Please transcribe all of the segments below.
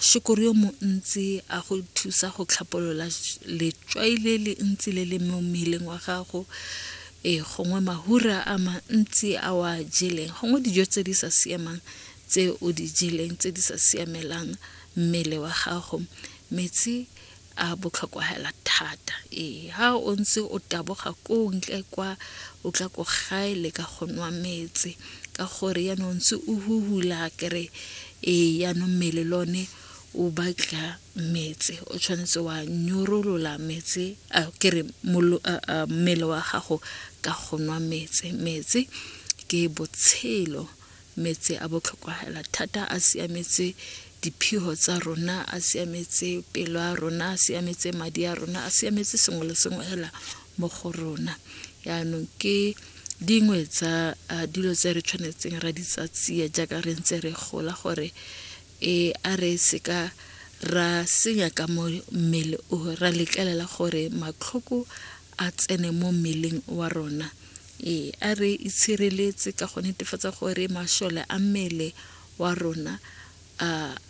Shukuru yo montsi a go thusa go tlhapolola letswai le le ntsi le le mo mmeleng wa gago e gongwe mahura a mantsi a wa jeleng gongwe dijo tse di sa siamang tse o di jeleng tse di sa siamelang mmele wa gago metsi a botlhokwa hela thata ee ha o ntse o taboga ko ntle kwa o tla ko gae le ka go nwa metse ka gore ya no ntse o huhula kere ee ya no mmele lone o batla metse o tshwanetse wa nyorolola metse a kere mmele wa gago ka go nwa metse metse ke botshelo Metsi a botlhokwa hela thata, a siametse diphiho tsa rona, a siametse pelo ya rona, a siametse madi a rona, a siametse sengwe le sengwe hela mo go rona yaanong ke dingwe tsa dilo tse re tshwanetseng ra di tsa tsia jaaka re ntse re gola gore e a re seka ra senya ka mo mmele o ra letlelela gore matlhoko a tsene mo mmeleng wa rona ee a re itshireletse ka go netefatsa gore mashole a mmele wa rona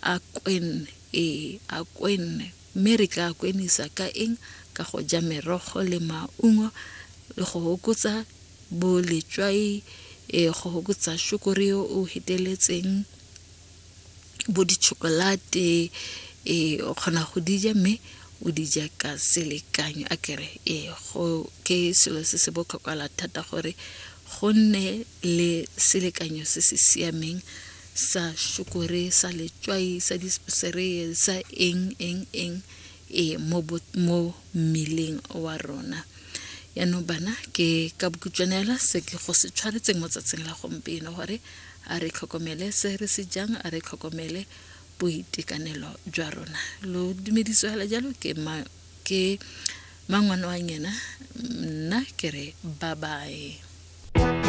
a kwenne ee a kwenne mme re ka kwenisa ka eng ka go ja merogo le maungo le go hokotsa boletswai e go hokotsa shukuri yo o heteletseng bo di-chocolate ee o kgona go di ja mme o di ja ka selekanyo a kere ee go ke selo se se botlhokwala thata gore go nne le selekanyo se se siameng sa shukore sa letswai sa disereye sa eng eng eng e mo mmeleng wa rona yaanong bana ke ka bokutswanela se ke go se tshwanetseng mo tsatsing la gompieno gore A re tlhokomele se re se jang, a re tlhokomele boitekanelo jwa rona. Lo dumeditswe gale jalo ke ma, ke mangwana wa ngena nna ke re babae.